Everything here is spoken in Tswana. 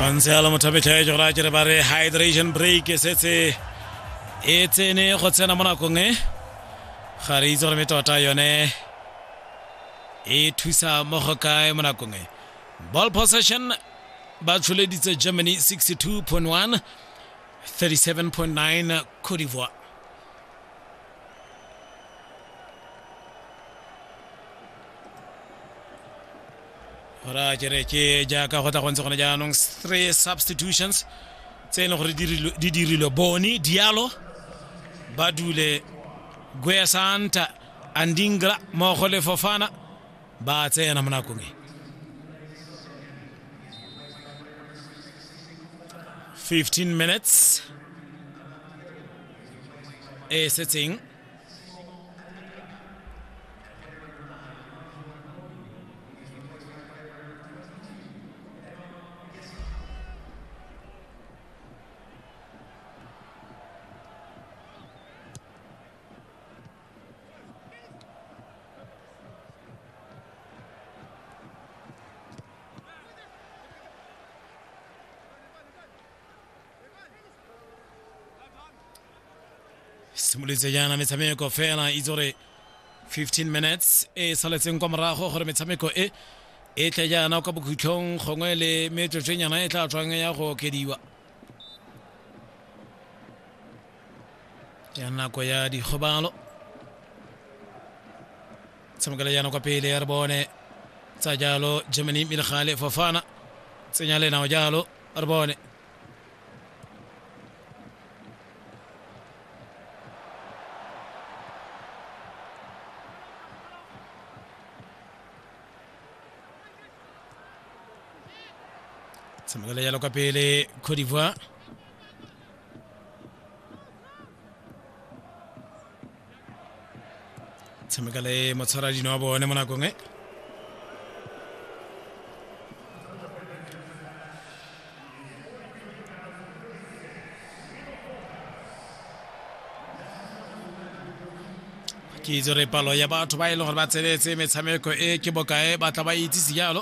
Khansela Mothabetlha ya jora ke re ba re hydration break e setse e tsene go tsena mo nakong e ga re itse gore me tota yone e thusa mo go kae mo nakong e ball possession ba tsholeditse germany 62.1 37.9 Cote d'Ivoire. gora kere ke jaaka go tla go ntse gone jaanong three substitutions tse e leng gore di dirilwe bone dialo ba dule guesanta andingra mmogo le fofana ba a tsena mo nakong e 15 minutes e setseng simolotse jaana metshameko fela itse gore 15 minutes e saletseng kwa morago gore metshameko e e tle jaana kwa bokhutlhong gongwe le metsotswenyana e tla tswang ya go okediwa ya nako ya dikgobalo tshamekela yana kwa pele ya re bone tsa jalo germany mme le gale fofana tsenya le nao jalo re bone tshamekela jalo ka pele cote d'ivoire tshameka le motshwara dino wa bone mo nakong e ke itse gore palo ya batho ba e leng gore ba tsenetse metshameko e ke bokae ba tla ba itsise jalo